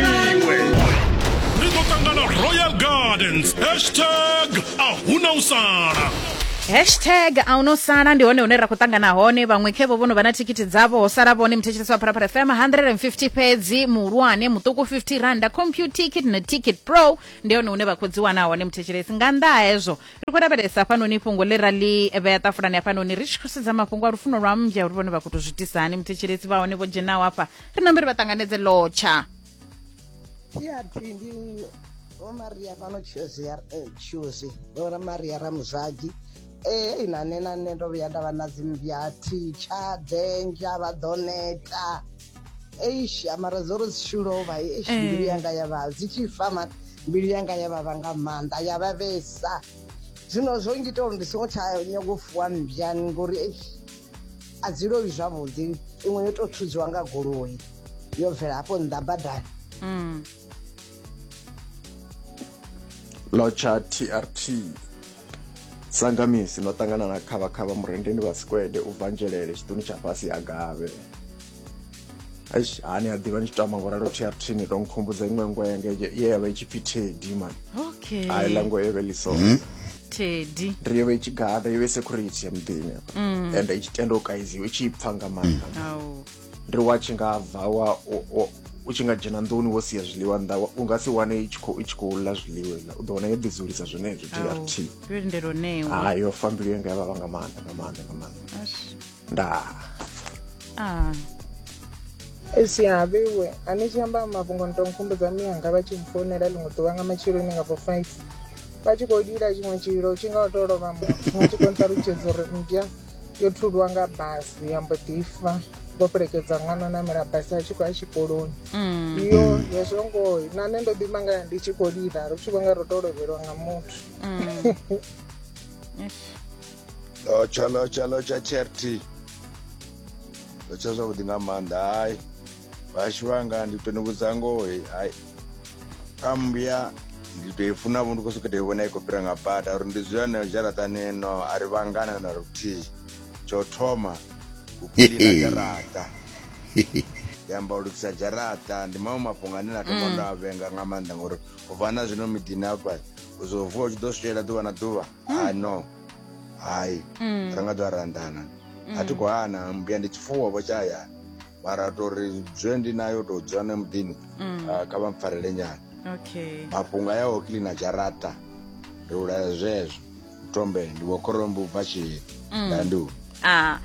iwe ri ḓo ṱangana royal gardens hashtag a huna u sala hashtag a uno sala ndi hone hune ra khou ṱangana hone vhaṅwe khevo vho no vha na thikhithi dzavho ho sala vhone muthetshelesi wa pharapara fm 150 fhedzi muhulwane muṱuku 50 randa compute ticket na ticket pro ndi hone hune vha khou dzi wana hone muthetshelesi nga nnḓa ha hezwo ri khou lavhelesa hafhanoni fhungo ḽe ra ḽi vhea ṱafulani hafhanoni ri tshi khou sedza mafhungo a lufuno lwa mmbya uri vhone vha khou to zwitisani muthetshelesi vha hone vho dzhenaho hafha ri nambe ri vha ṱanganedze lotsha ndi vho maria fhano tshozi ya eh, tshozi vho maria ramuzwagi ee na nṋe na nṋe ndo vhuya nda vha na dzimmbya thitsha dzenja vha ḓo neta eish mara dzo ri dzi tshi lovha eish eh. mbilu yanga ya vha dzi tshi fa ma mbilu yanga ya vhavha nga maanḓa ya vha vhesa zwino zwo ngita uri ndi songo tsha nyago fuwa mmbya ngori eish a dzi lowi zwavhuḓi iṅwe yo tou thudziwa nga goloi yo bvela hafho nnḓa badani mm. lotsha trt sangamisi no ṱangana na khavhakhavha murendeni vha sikwede u bva nzhelele tshiṱuni tsha fhasi ha gavhe eish hani a ḓivha ni tshi tama vho ralo trtri ni to nkhumbudza iṅwe ngo yanga ye ya vha i tshi pfi tedi man okay a iḽa ngo ye vhe liso hmm? tedi ri yo vha i tshi gada yo vhe security ya muḓini mm. and i tshi tenda u kaiziwa i tshi i pfa nga maanḓa mm. ri wa tshi nga bva wa u tshi nga dzhena nḓuni wo sia zwiḽiwa nnḓa u nga si wane i tshi khou ḽa zwiḽiwa iḽa u ḓo wana yo ḓidzulisa zwenezwo trt ha yo fa mbilu yanga ya vhavha nga maanḓa nga maanḓa nga maanḓa ndaa Ah. esi havhiwe a ni tshi amba mafhungo ni to nkhumbudza miyanga vha tshi mfounela ḽiṅwe ḓuvha nga matsheloni nga bo five vha tshi khou lila tshiṅwe tshililo tshi nga u tou lovha muthu vha tshi khou nṱalutshedza uri mmbya yo thulwa nga basi ya mbo ḓi fa vho fhelekedza ṅwana o namela basi a tshi khou ya tshikoloni Mm. yo hezwo ngoho na nṋe ndo ḓi mangala ndi tshi khou lila ri tshi vho nga ro tou lovhelwa nga muthu Mm. Eish. lotsha lotsha lotsha charity lotsha zwavhuḓi nga maanḓa hayi vhashu vhanga ndi to ni vhudza ngoho hayi kha mbuya ndi to i funa vho ndi khou sokou tou i vhona i khou fhira nga bada uri ndi zwone dzharaṱani no a ri vhangana na luthihi tsho thoma u kiḽina dzharaṱa ndi amba u lugisa dzharaṱa ndi maṅwe mafhungo ane na thoma ndo a vhenga nga maanḓa ngori u bva na zwino miḓini hafha u zwo vuwa u tshi ḓo switshela ḓuvha na ḓuvha ha no hai Mm. ra nga ḓo ra anḓana a thi khou hana mbuya ndi tshifuwo vho tshahayani mara tori zwe ndi nayo tou dzula na muḓini ah, kha vha mpfarele nyana okay mafhungo aya o kilina dzharaṱa ri ulaya zwezwo ntombele ndi vho khorombo u bva tshiheni ndandu ah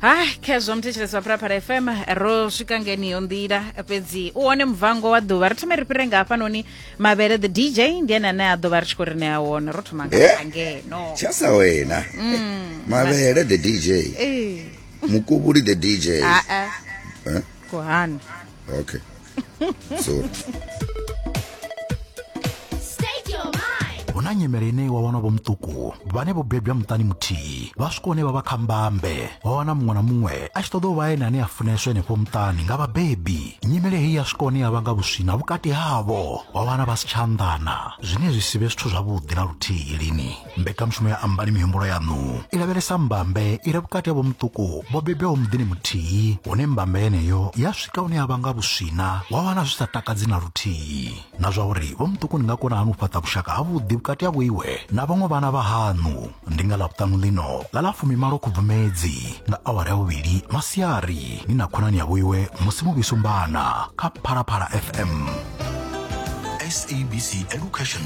hai khezwo muthetshelesi wa phalaphala fm ro swika ngeniyo nḓila fhedzi u wone muvango wa ḓuvha ri thome ri fhire nga hafhanoni mavhele the dj ndi ene ane a ḓo vha ri tshi khou ri ṋea wone ro thoma nga eh, ngeno tshasa wena mm. mavhele the dj eh. mukubuli the dj ah, ah. eh? kuhani okay zuri hu na nyimele ine wa wana vho muṱuku vhane vho bebwa muṱani muthihi vha swika hune vha vha kha mbambe wa wana muṅwe na muṅwe a tshi ṱoḓa u vha ene ane a funeswa henefho muṱani nga vhabebi nyimele heyi ya swika hune ya vhanga vhuswina vhukati havho wa wana vha si tsha anḓana zwine zwi si vhe zwithu zwavhuḓi na luthihi lini mbekanyamushumo ya ambani mihumbulo yaṋu i lavhelesa mbambe i re vhukati ha vhomuṱuku vho bebwaho muḓini muthihi hune mbambe yeneyo ya swika hune ya vha nga vhuswina wa wana zwi sa takadzi na luthihi na zwa uri vhomuṱuku ni nga kona hani u fhaṱa vhushaka havhuḓi vhukati ha vhoiwe na vhaṅwe vhana vha haṋu ndi nga ḽavhuṱanu ḽino ḽa ḽa fumimalo khubvumedzi nga awara ya vhuvhili masiari ni na khonani ya vhoiwe musi muvhisumbana kha phalaphala fm SABC Education